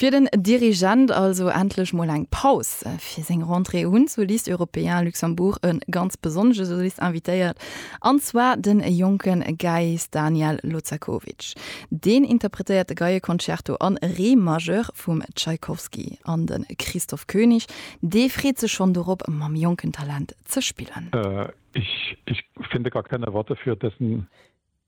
Fir den Dirigent also endlech mol eng Paus. Fir seng Rentrée hunn d'Solistes Européens Luxembourg e ganz besonnesche Solist invitéiert, an zwar de jonke Geiist Daniel Lozakovic. Deen interpretéiert de Geieconcerto a Re Majeur vum Tschaikowski, an de Christoph König, dee freet sech schonn dorop, mam jonken Talent ze spillen.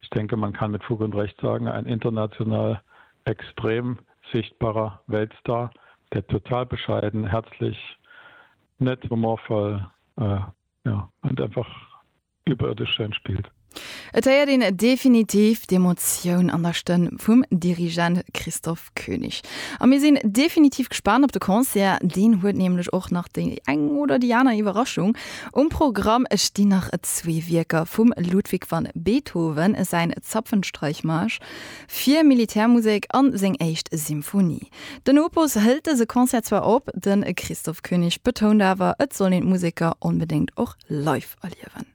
Ich denke, man kann mit Fug und Recht sagen, ein international extrem sichtbarer Weltstar, der total bescheiden, herzlich, nett, humorvoll, ja, und einfach überirdisch schön spielt. Et héiert een definitiv d'Emotioun an der Stëmm vum Dirigent Christoph König. A mir sinn definitiv gespaant op de Concert, deen huet nämlech och nach déi eng oder déi aner Iwwerraschung um Programm. Et stinn nach zwee Wierker vum Ludwig van Beethoven, säin Zapfenstreichmarsch fir Militärmusek a seng éischt Symphonie. Den Opus hëlt dëse Concert zwar op, de Christoph König betount awer, et soll een d'Museker onbedéngt och live erliewen.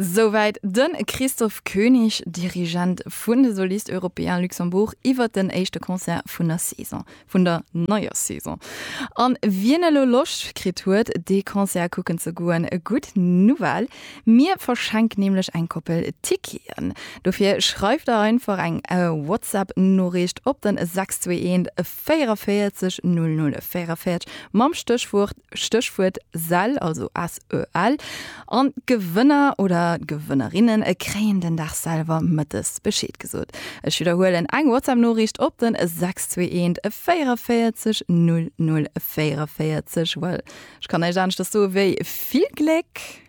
Souwäit de Christophe König, Dirigent vun de Solistes Européens Luxembourg, iwwer den éischte Concert vun der Saison, vun der neier Saison. An wien elo Loscht kritt huet, dee Concert kucken ze goen, gutt Nouvelle, mir verschenken nämlech eng Koppel Ticketen. Dofir schreift der einfach eng WhatsApp-Noriicht op den 621 44 0044 mam Stéchwuert, Stéchwuert sell, also S-E-L, an d'Gewënner oder d'Gewënnerinnen e kréien den Dag selwer mëttes Bescheed gesot. Ech widderhuelen, eng WhatsApp-Noriicht op den 621 44 0044, well ech kann näischt aneschters soe wéi vill Gléck!